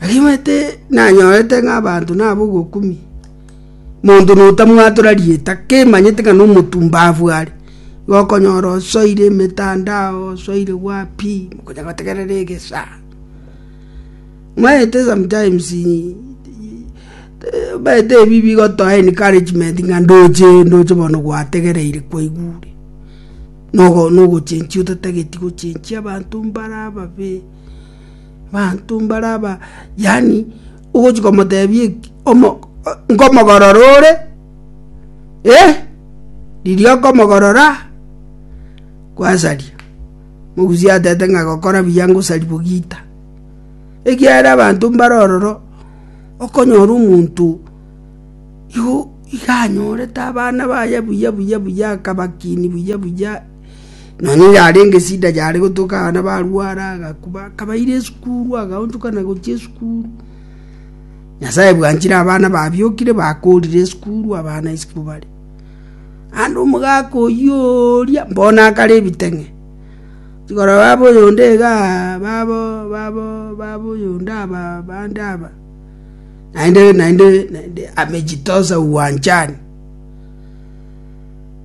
Arimanyete nanyorete ng'a abanto naba ogokumia, monto notamwatora rieta, kemanyete ng'a nomotumba abwo are, igo okonyora osoire emetandao, osoire wapi, okonya gotegerera egesaa. Omanyete sometimes omanyete ebi bigotoa encouragement ng'a ndoche ndoche bono gwategereire kwaigure, nogo nogochenchia otatageti gochenchia abanto mbare ababe. Abanto mbare aba yaani ogochia komotebia eki omo nkomogorora ore, eh, riria okomogorora, kwasaria. Omogusi atebete ng'a gokora buya ngosaria bogita. Ekiagera abanto mbare ororo, okonyora omonto igo iga anyorete abana baye buya buya buya akabakinia buya buya. Nonya oyarenge esida yare gotoka abana barware, agakuba, akabaira esukuru, agaonchokana gochia esukuru. Nyasae bwanchire abana babiokire bakorire esukuru, abana isiko bare. Ande omogaka oyio oria mbona akare ebiteng'e igoro baba oyonde iga babo babo baba oyonde aba bande aba naende naende naende amejitosa uwanjani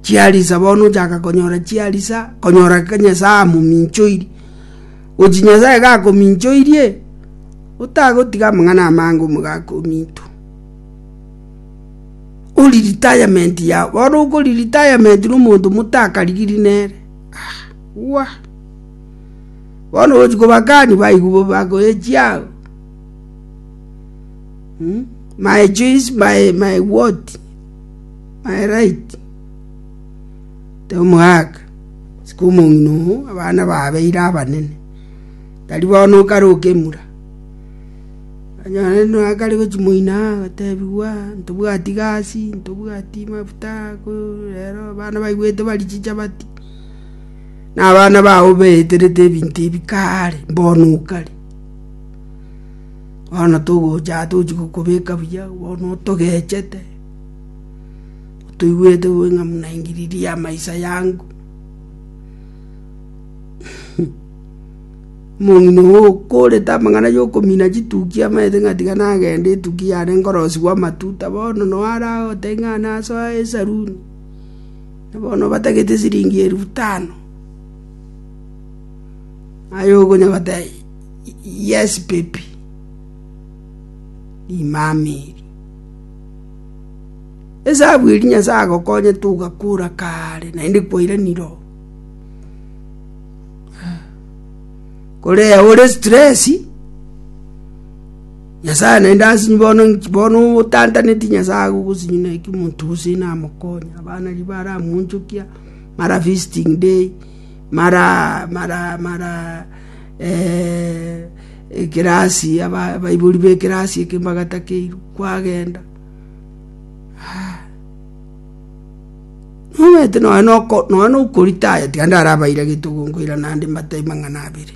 chiarisa bono ochaka konyora chiarisa konyora ng'a nyasae amominchoiri gochi nyasae iga akominchoirie otagotiga amang'ana amange omogaka ominto ori retirement yago bono okori retirement na omonto motakarigiri nere ah wah bono ogochi kobakani baigwa bo bakoe chiago mmmh my choice my my what. my right tomoaka isiko omong'ina oo abana babeire abanene tari bono okare okemura onye no akare gochi moino aa otebigwa ntobwati gasi ntobwati mafuta ko rero abana baigwete bari chichabati na abana bago baeterete ebinto ebi kaare bono okare. Bono togocha aa tochia gokobeka buya, bono otogechete, otoigwete bobe ng'a buna ingiriri y'amaiso yango. Omong'ina ogo okorete amang'ana yokomina chitukia amaete ng'a tiga nagende etukia yane nkorosigwa amatuta bono noe aragotebi ng'a nasoe esaruni, na bono obatagete esiringi elfu tano, aye okonya goteba. Yes baby, rimama eri. Esabu eri Nyasae agokonye togakura kare naende kwaira niro. Korea ore stress, Nyasae naende asinyi bono bono otantaneti Nyasae agogosinyi na eki omonto gose namokonye. Abana ribaara amonchokia, mara visiting day, Abaibori b'ekerasi eke mbagatakeirwe kwagenda. Nomanyete nonye na okoritaya tiga ndarabairagetie okonkoira naende mbatebi mang'ana abere.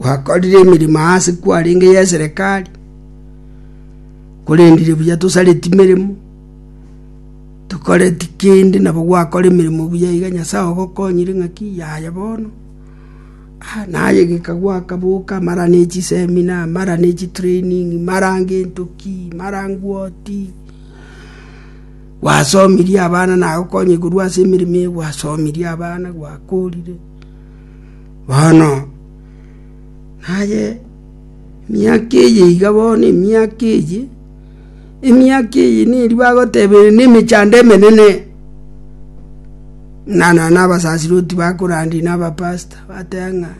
Gwakorire emeremo aase kwarenge y'eserekari, korendire buya tosareti meremo, tokoreti kende nabo gwakora emeremo buya iga Nyasae ogokonyire ng'aki yaya bono, ah naye geka gwakaboka mara ne chiseminar, mara ne chitraining, mara ngento ki, mara ngwoti, gwasomirie abana nagokonyire korwa ase emeremo eye gwasomirie abana, gwakorire. “Bono, naye emiaka eye iga bono, emiaka eye, emiaka eye neria bagoteberera nemechando emenene, buna nonya na abasasiroti bakorandia na abapasta, bateba ng'a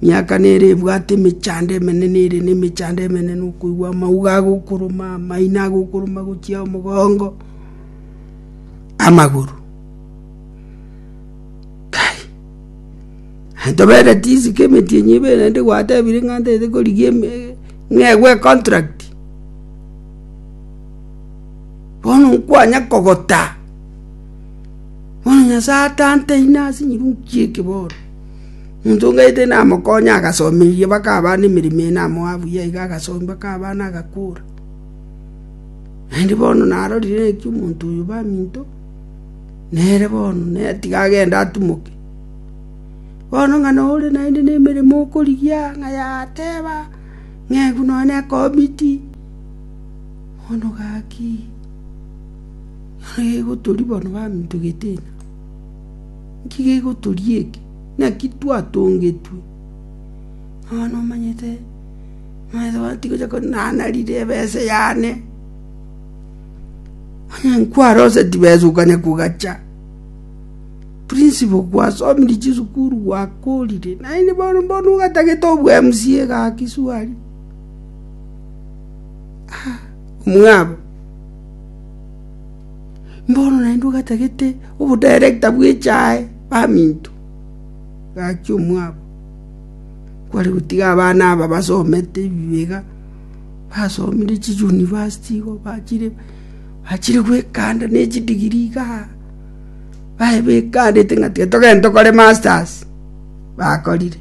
emiaka nere ebwate emechando emenene ere nemechando emenene okoigwa amauga agokoroma, amaino agokoroma gochia omogongo, amagoro. Kai, antoberete chisiko emetienyi ebere naende gwatebire ng'a ntaete korigia ng'egwe econtract. Bono nkwanya kogota, bono Nyasaye atante ime ase nyirungu chi'eke bono. Omonto ng'aete namokonye agasomeirie mpaka abana ne emeremo eye namoa buya iga agasomi mpaka abana agakura. Naende bono narorire ng'a omonto oyo baminto. “Nere bono, nere tiga agende atimoke. Bono ng'a nore naende nemeremo okorigia ng'a yateba, Ng'egu nonya nekomiti, bono gaki, naki gegotoria bono baminto getenena? Nki gegotoria eke? Naki twatongetwe, nonya nomanyete, nonya tigocha konyara narire ebese yane. Onye nkwaroseti besukane kogacha, principal kwasomiri chisukuru gwakorire, naende bono mbona ogatagete obu MCA gaki swali. Ah, omwabo. Mbono naende ogatagete obo director bw'echae baminto gaki omwabo. Kware gotiga abana aba basomete ebibe iga. basomire chiyunivasiti igo, bachire bachire goekanda ne chidigiri iga, baye baekandete ng'a tiga togende tokore masters, bakorire.